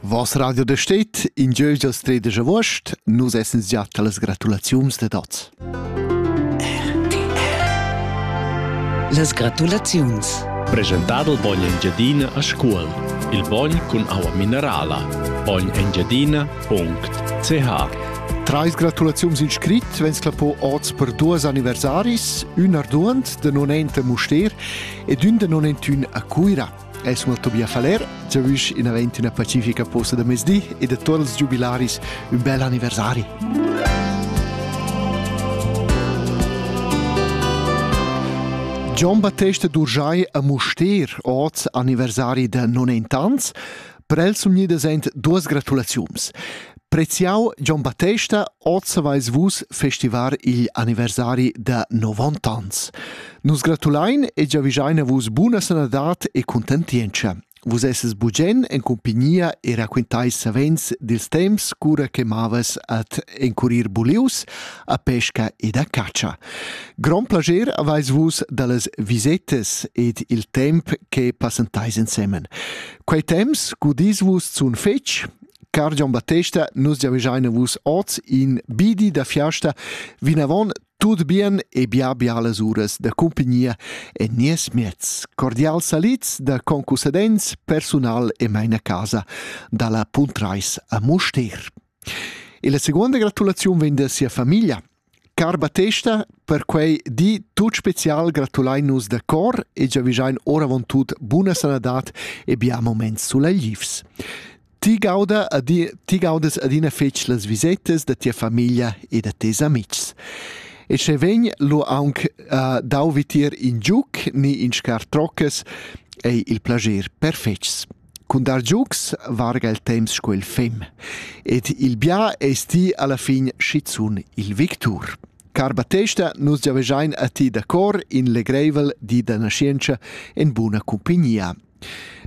Was Radio de steht in Jögel stredische Wurst, nus essens già talas gratulaziums de dots. Las gratulaziuns. Presentado il bogn Engiadina a Scuol, il bogn con aua minerala, bognengiadina.ch Trais gratulaziuns in scrit, vens clapo oz per duas anniversaris, un arduant de non ente Muster ed un de non entun a Cuira. El sun Tobias Faller, giavüsch inavant üna pacifica posta da mezdi e da tuot ils giubilaris ün bel anniversari. Gian Battesta d'Urgiai a Mustér, oz anniversari da 90 ans, Per el sun gnidas aint duos gratulaziuns. Preziau John Battesta, oz avais vus festivar il anniversari da 90 ans. Nus gratulain e giavischein a vus buna sanadad e contentientscha. Vus esses bugen en compagnia e raquintais savens dils temps cura che mavas at encurir bulius a pesca ed a catscha. Grand plager avais vus dallas visettes ed il temp che passentais ensemen. Quei temps gudis vus zun fetg, car Gian Battesta, nus giavegiaina vus oz in bidi da fiasta vinavon tut bien e bia bialas uras da cumpagnia en nies miez. Cordial salits da concussadents, personal e meina casa dalla Puntreis a Mustér. E la seconda gratulaziun vegn da sia famiglia, Car Battesta, per quei di tut special gratulein nus da cor e giavischein oravontut buna sanadad e bia moments suleglivs. Ti gauda ad, ti gaudas adina fetg las visetas da tia famiglia e da tes amitgs. E sche vegn lu aunc uh, dau vitier in giuc ni in scar troccas, ei il plager perfetgs. Cun dar giugs varga il temps sco il fem ed il bia ei sti alla fin schizun il victur. Car Battesta, nus giavegiain a ti da cor in legreivel di da nascienza en buna cumpagnia.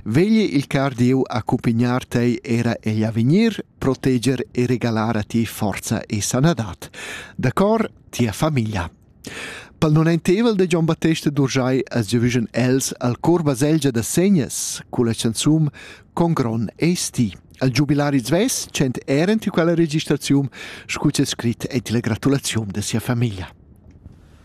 Vegli il car Dieu accumpagnar tei era egl avegnir, proteger e regalar a ti forza e sanadad. Da cor, tia famiglia. Pel non ainteivel da Gion Battesta d'Urschai as giavüschan els al cor baselgia da Segnas culla chanzun Con gron esti. Al giubilari svess tschent eran tü quella registraziun scu c'è scrit ed la gratulaziun da sia famiglia.